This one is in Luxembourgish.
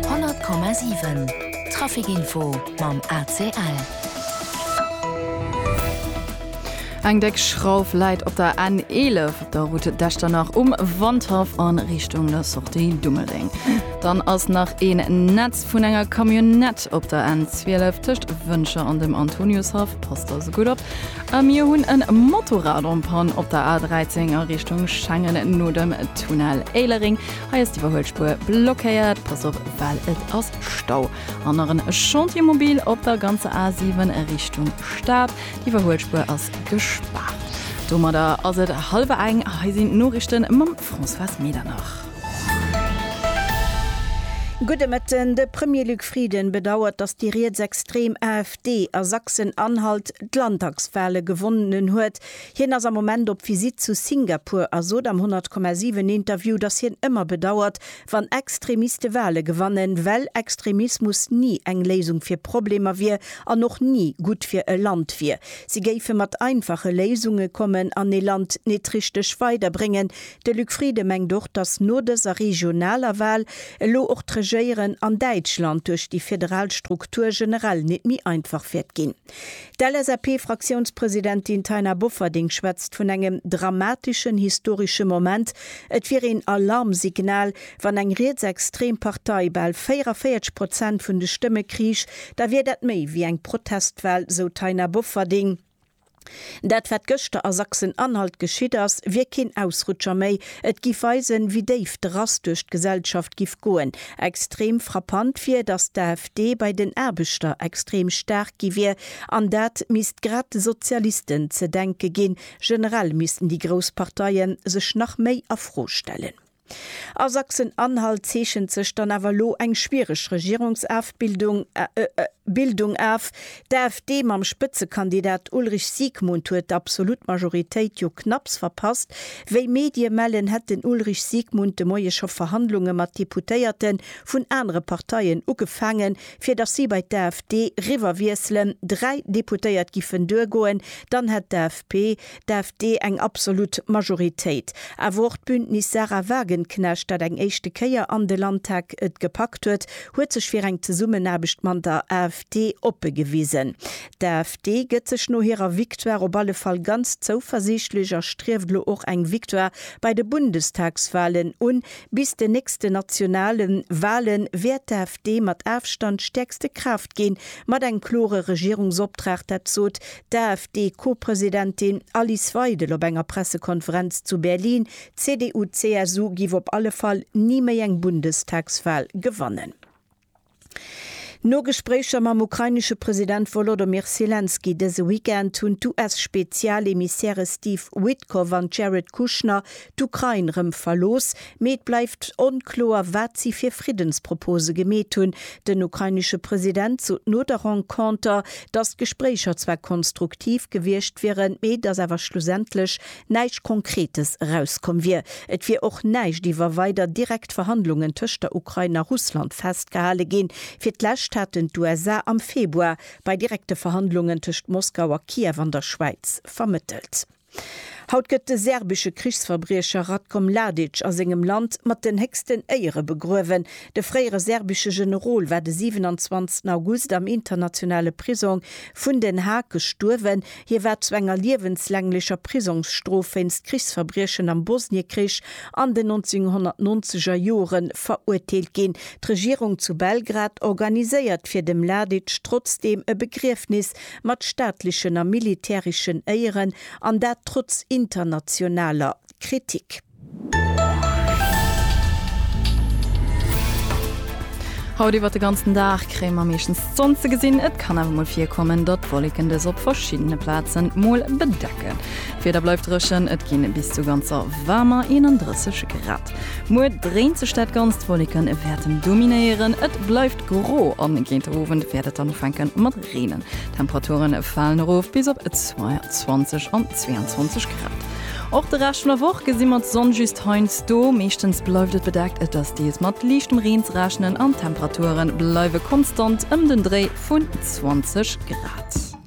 100,7 Trafic-Info mam ACL. Eng déck Schrauf läit op der N 11 op der Route d'Echternach um Wandhaff a Richtung der Sortie Dummeldeng. Dann ass nach een Netz vun enger Camionnette op der N 12 tëscht Wëncher an dem Antoniushaff. Passt also gutt op. A mir hunn e Motorrad en Panne op der A 13 a Richtung Schengen no dem Tunnel Éilereng. Hei ass d'Iwwerhuelspuer blockéiert, pass op well et ass Stau. An nach en Chantier mobile op der ganzer A7 Richtung Stad, d'Iwwerhuelspuer ass gespaart. Domadder ass et hallwer eng, hei sinn d'Noriichte mam Françoise Medernach. Gudde Mëtten. De Premier Luc Frieden bedauert, datt déi rietsextrem AfD a Sachsen-Anhalt d'Landtagswale gewonnen huet. Hien ass am Moment op Visitt zu Singapur a sot am 100,7 Interview, datt hien ëmmer bedauert, wann Extremiste Wale gewannen, well Extremismus ni eng Léisung fir Problemer wier an och ni gutt fir e Land wier. Si géife mat einfache Léisunge kommen an ee Land nit richteg weiderbréngen. De Luc Frieden mengt och, datt no dëser regionaler Wal elo och d'Regéieren an Däitschland duerch déi federal Struktur generell nit méi einfach wäert ginn. D'LSAP-Fraktiounspresidentin Taina Bofferding schwätzt vun engem dramateschen historesche Moment. Et wier een Alarmsignal, wann eng rietsextrem Partei bal 44 Prozent vun de Stëmme kriich, da wier dat méi wéi eng Protestwal, sou d'Taina Bofferding. Dat wat gëschter a Sachsen-Anhalt geschitt ass, wier keen Ausrutscher méi. Et giff weisen, wéi déif de Rass duerch d'Gesellschaft giff goen. Extrem frappant wier, datt d'AfD bei den Aarbechter extrem staark gi wier. An dat misst grad de Sozialisten ze denke ginn. Generell missten déi grouss Parteie sech nach méi a Fro stellen. A Sachsen-Anhalt zeechent sech dann awer elo eng schwiereg Regierungsafbildung Bildung af. D'AfD mam Spëtzekandidat Ulrich Siegmund huet d'absolut Majoritéit jo knapps verpasst. Wéi Medie mellen, hätt den Ulrich Siegmund de Moie scho Verhandlunge mat Deputéierte vun anere Parteien ugefaangen, fir datt si bei d'AfD riwwerwiesselen. Dräi Deputéiert giffen duergoen, dann hätt d'AFP d'AfD eng absolut Majoritéit. Awer och d'Bündnis Sahra Wagenknecht, dat eng éischte Kéier an de Landtag et gepackt huet, huet sech fir eng Zesummenaarbecht man der AfD oppe gewisen. D'AfD gëtt sech no hirer Victoire op alle Fall ganz zouversiichtlech a strieft elo och eng Victoire bei de Bundestagswahlen un. Bis den nächsten nationale Wahle wäert d'AfD mat Afstand stäerkste Kraaft ginn, mat engem klore Regierungsoptrag, dat sot d'AfD-Co-Presidentin Alice Weidel op enger Pressekonferenz zu Berlin, d'CDU-CSU giff op alle Fall ni méi eng Bundestagswal gewannen. No Gespréicher mam ukrainesche President Wolodymyr Selenskyj dëse Weekend hunn d'US-Spezialemissäre Steve Witkoff an d'Jared Kushner d'Ukrain rëm verlooss, mee et bleift onkloer, wat si fir Friddenspropose gemeet hunn. Den ukrainesche President sot no der Renconter, datt d'Gespréicher zwar konstruktiv gewiescht wieren, mee datt awer schlussendlech näischt Konkretes erauskomm wier. Et wier och näischt iwwer weider direkt Verhandlungen tëscht der Ukrain a Russland festgehale ginn. Fir d'lescht haten d'USA am Februar bei direkte Verhandlungen tëscht Moskau a Kiew an der Schwäiz vermëttelt. Haut gëtt de serbesche Krichsverbriecher Ratko Mladic a sengem Land mat den héchsten Éiere begruewen. De fréiere serbesche Generol war de 27 August am internationale Prisong vun Den Haag gestuerwen. Hie war zu enger liewenslänglecher Prisongsstrof wéinst Krichsverbriechen am Bosniekrich an den 1990er Jore verurteelt ginn. D'Regierung zu Belgrad organiséiert fir de Mladic trotzdeem e Begriefnis, mat staatlechen a militäreschen Éieren, an dat trotz internationaler Kritik. Haut iwwert de ganzen Dag kréie mer meeschtens d'Sonn ze gesinn, et kann awer mol virkommen, datt Wolleken dës op verschiddene Plazen mol bedecken. D'Wieder bleift dréchen, et ginn bis zu ganzer waarmer 31 Grad. Muer dréint sech dat Ganzt, Wolleken wäerten dominéieren, et bleift gro an géint den Owend wäert et dann ufänken mat. Reenen. D'Temperaturen falen erof bis op 22 an 22 Grad. Och de Rescht vun der Woch gesi mer d'Sonn just heiansdo. Meeschtens bleift et bedeckt, et ass deels mat liichtem Reen ze rechnen an d'Temperaturen bleiwe konstant ëm den Dréi vun 20 Grad.